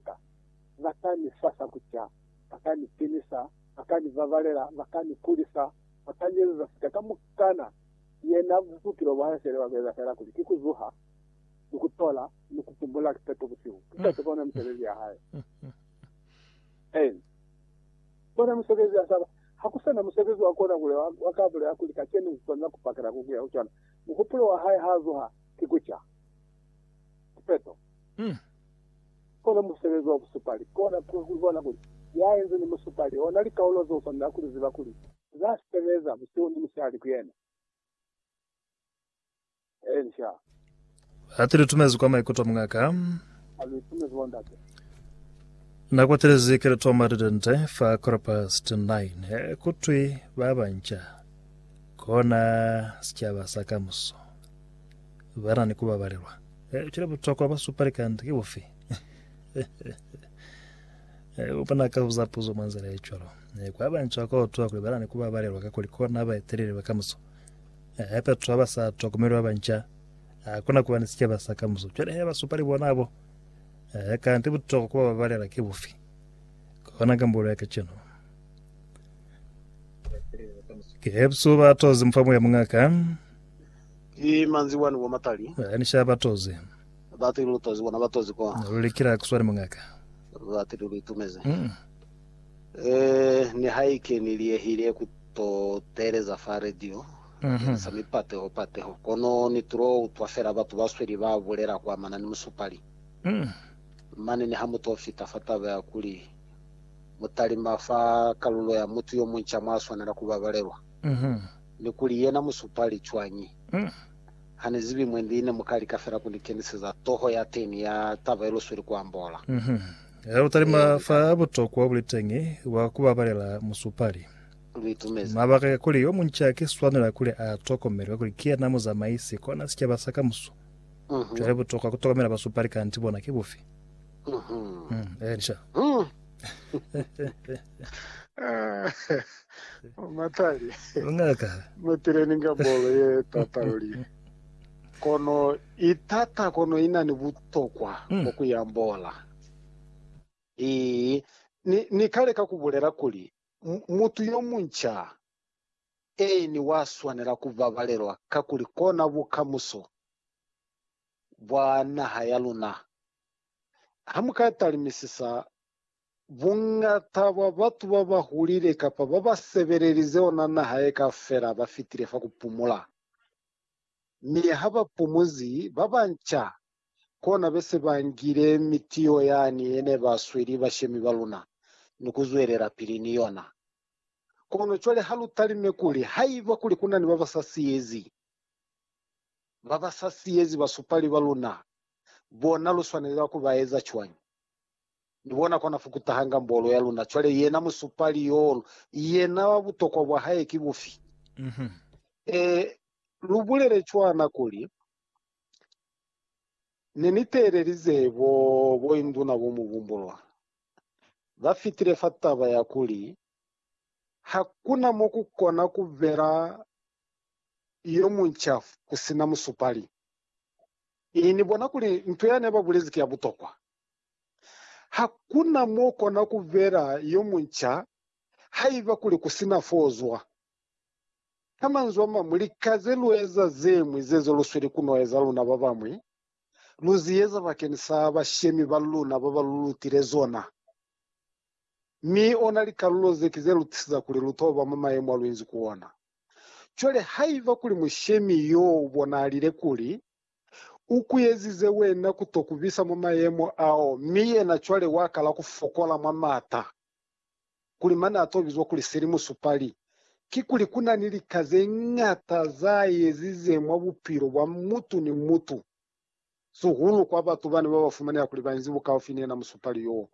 Ka. Ba ka ni sasa ku ca, ba ka ni pinisa, ba ka ni babalela, ba ka ni kulisa, ba ka ni ezeza sika kamukana. Yena bupilo bwa hae fela ba bu eza fela kuli ki ku zuha, ni ku tola, ni ku pumula kipeto busihu. Ki kaufela ona misebezi ya hae. Amen. Ona musebezi ya saba. Ha ku sa na musebezi wa kona kuli wa, wa ka bulela kuli kacenu ku kona ku pakela ku kuya ku cona. Muhupulo wa hae ha zuha, ki ku ca. sipeto. Mm. Kona musebezi wa busupali, kona ku, ku bona kuli Ya enze ni musupali ona likaulo zeo swanela kuli ziba kuli za sebeza busihu ni musihali ku Yena. Ee, nca. Hati lu tumezi kwa maikuto, mungaka. Ha lu itumezi, Bondate. Na kwatelezi keleto matete nte fa quarter past nine, eh, kutwi ba banca, kona sicaba sa kamuso. ba na ni ku babalelwa. Eh, cwale butokwa bwa supa likanda ki bufi? Eh, bo bona ka buza puzo mwa nzila ye cwalo. Eh, kwa banca kwa utwa kuli ba na ni ku babalelwa ka kuli kona ba eteleli ba kamuso. Eh, hape batu ba ba sa tokomelwa banca, ha kuna kuba ni sikeba sa kamuso. Cwale he ba supa li bona abo. Eh, kanti butokwa ku ba babalela ki bufi? Kona kambulo ya kacenu. Ke buso ba tozi mufa moya mungaka. Ki manzi wani wa matali. Ba ni shaya ba tozi. Ba ti lu tozi bona ba tozi kwa. Lu li kila ku swani mungaka. Ba ti lu lu itumezi. Eh, nihaike ni liyehile ku to teeleza fa radio, ni sa mi pateho pateho, kono ni tulo utwa fela batu ba sweli ba bulela ku amana ni musupali. Mane niha mu to fita fa taba ya kuli, mu talima fa kalulo ya mutu yo munca mwa swanela ku babalelwa. ni kuli yena musupali cwañi. Hane zibi mwendi ne muka lika fela kuni keniseza toho ya teñi ya taba ye lusweli ku ambola. Ha lu talima fa butokwa buli teñi bwa ku babalela musupali, mabaka ka kuli yo munci a ki swanela kuli a tokomele kakuli ki yena muzamaisi kona sicaba sa kamuso. Cwale butokwa ku tokomela basupali kanti bona ki bufi? Eeni, sha. Matali. Ngaka. Mupileni nga bolo ye tata luli. Kono i tata kono i na ni butokwa mm. bwa ku yambola. I, ni, ni kale ka ku bulela kuli mutu yo munca eni wa swanela ku babalelwa kakuli kona bukamuso bwa naha ya luna. Ha mu ka talimisisa, buñata bwa batu ba ba hulile kapa ba ba sebelelize ona naha ye kaufela ba fitile fa ku pumula. Mi ha ba pumuzi, ba banca kona be se ba ngile mitiyo yani ye ne ba sweli bashemi ba luna ni ku zwelelapili ni yona. Kono cwale ha lu talime kuli haiba kuli ku na ni ba ba sa siyezi, ba ba sa siyezi basupali ba luna, bona lu swanelela ku ba eza cwañi? Ni bona kwa na fukutahanga mbolo ya luna. Cwale yena musupali yoo, yena butokwa bwa hae ki bufi? Ee, lu bulele cwana kuli, Ne ni teelelize bo, boinduna bo mubumbulwa ba fitile fa taba ya kuli Hakuna mo ku kona ku bela yo munca ku si na musupali. I ni bona kuli nto ya ne ba bulezi ki ya butokwa. Hakuna mo kona ku bela yo munca haiba kuli ku si na fo zwa. Ka manzwi a mañwi, lika ze lu eza ze ñwi ze zo lu sweli ku no eza luna ba bañwi, lu zi eza bakeni sa bashemi ba luna ba ba lu lutile zona. Mi ona likalulo ze ki ze lu tisiza kuli lu toba mwa mayemo a lu inzi ku ona. Cwale, haiba kuli mushemi yo u bonalile kuli u kuyezize wena ku to ku bisa mwa mayemo ao, mi yena cwale wa kala ku fokola mwa m'ata, kuli mane a to bizwa kuli seli musupali, kikuli ku na ni lika ze ñata za yezize mwa bupilo bwa mutu ni mutu, sihulu kwa batu bane ba ba fumaneha kuli ba inzi bukaufi ni yena musupali yo.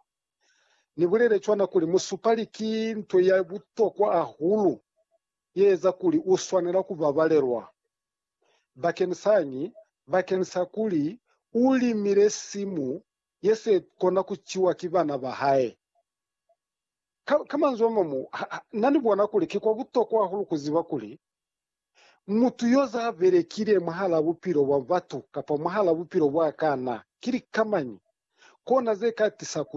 Ni bulele cwana kuli musupali ki nto ya butokwa hahulu ye eza kuli u swanela ku babalelwa. Bakenisaañi? Bakenisa kuli u limile simu ye se kona ku ciwa ki bana ba hae. Ka, ka manzwi a mañwi, ha, ha na ni bona kuli ki kwa butokwa hahulu ku ziba kuli mutu yo za belekile mwahalaa bupilo bwa batu kapa mwahalaa bupilo bwa kana ki likamañi, kona ze ka tisa ku